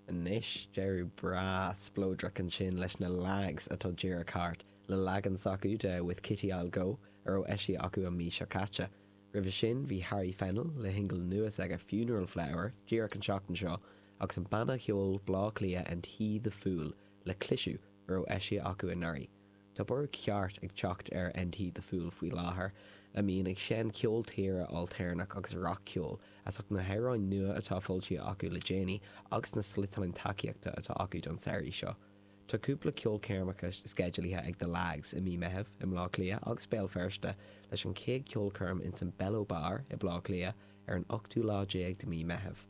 Anois, deireadh breá spleodrach ansin leis na Lags atá díreach thart, le leagan s'acu de 'With Kitty I'll Go' a raibh eisithe acu an mhí seo caite. Roimhe sin, bhí Harry Fennell le shingil nua s'aige 'Funeral Flower' díreach an tseachtain seo agus an banna cheoil Bleá Cliath 'And He the Fool' le cliseadh, a raibh eisithe acu anuraidh. Tá borradh ceart ag teacht ar And He the Fool faoi láthair, a mbíonn ag seinm ceol tíre ailtéarnach agus rac-cheol, as ucht na hamhráin nua atá foilsithe acu le déanaí agus na sliotáin tacaíochta atá acu don samhraidh seo. Tá cúpla ceolchoirmeacha sceidealaithe ag The Lags i mí Meitheamh i mBleá Cliath agus Béal Feirste, leis an chéad cheolchoirm ins an Bello Bar i Bleá Cliath ar an ochtú lá déag de mí Meitheamh.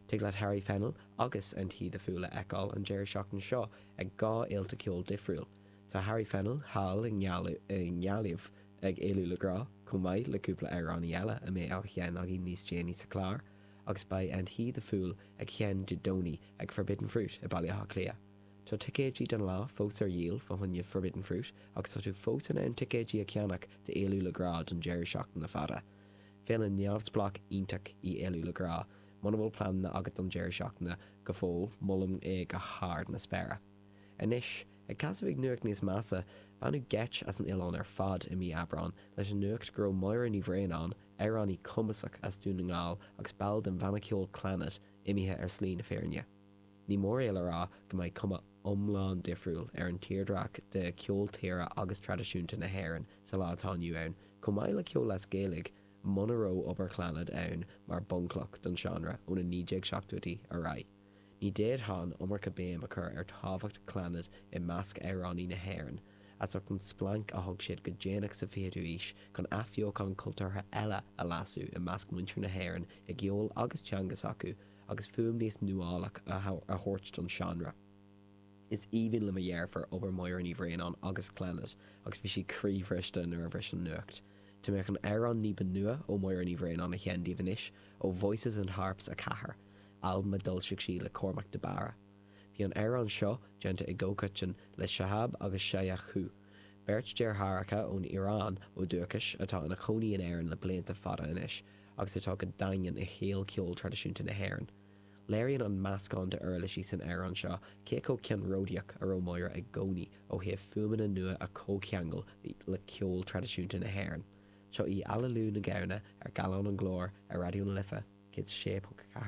Tig leat Harry Fennell agus And He the Fool a fheiceáil an deireadh seachtaine seo ag dhá fhéilte ceoil difriúil, Tá Harry Fennell thall i nGaillimh ag Éalú le Grá, chomh maith le cúpla amhránaí eile a mbeidh á sheinn againn níos déanaí sa chlár, agus beidh And He the Fool ag seinn Dé Domhnaigh ag Forbidden Fruit i Baile Átha Cliath. Tá ticéidí don lá fós ar dhíol fá choinne Forbidden Fruit agus tá tú fós in ann ticéidí a cheannach d'Éalú le Grá don deireadh seachtaine fada. Féile neamhspleách iontach í Éalú le Grá. Muna bhfuil pleananna agat don deireadh seachtaine go fóill, molaim é go hard na spéire. Anois, ag casadh ag nuacht níos measa, baineadh geit as an oileán ar fad i mí Aibreáin leis an nuacht go raibh Máire Ní Bhraonáin, amhránaí cumasach as Dún na nGall agus ball den bhanna ceoil Clannad, imithe ar shlí na fírinne. Ní mór é le rá go mbeidh cuma iomlán difriúil ar an tírdhreach de cheol tíre agus traidisiúnta na hÉireann sa lá atá inniu ann, chomh maith le ceol as Gaeilge, muna raibh obair Chlannad ann mar bhunchloch don seánra ó na 1970idí ar aghaidh. Ní d'fhéadfadh an iomarca béim a chur ar thábhacht Clannad i measc amhránaí na hÉireann, as ucht an splanc a thug siad go déanach sa 20ú aois chun athbheochán cultúrtha eile a lasadh i measc muintir na hÉireann i gceol agus teanga s'acu agus fuaim níos nuálach a thabhairt don seánra. Is aoibhinn le mo dheirfiúr obair Mháire Ní Bhraonáin agus Clannad agus bhí sí croíbhriste nuair a bhris an nuacht. Tá mé chun amhrán ní ba nua ó Mháire Ní Bhraonáin a sheinn daoibh anois, ó Voices and Harps 4. albam a d'fhoilsigh sí le Cormac de Barra. Bhí an amhrán seo déanta i gcomhchoiteann le Shahab agus Shayan Coohe, beirt deartháireacha ón Iaráin ó dhúchais atá ina chónaí in Éirinn le blianta fada anois agus atá go daingean i shaol cheol traidisiúnta na hÉireann. Léiríonn an meascán d'uirlisí san amhrán seo cé chomh ceannródaíoch a raibh Máire i gcónaí ó thaobh fuaimeanna nua a chomhcheangal le ceol traidisiúnta na hÉireann. Seo í Aililiú na Gamhna ar Gallán an Ghlóir ar Raidió na Life 106.4.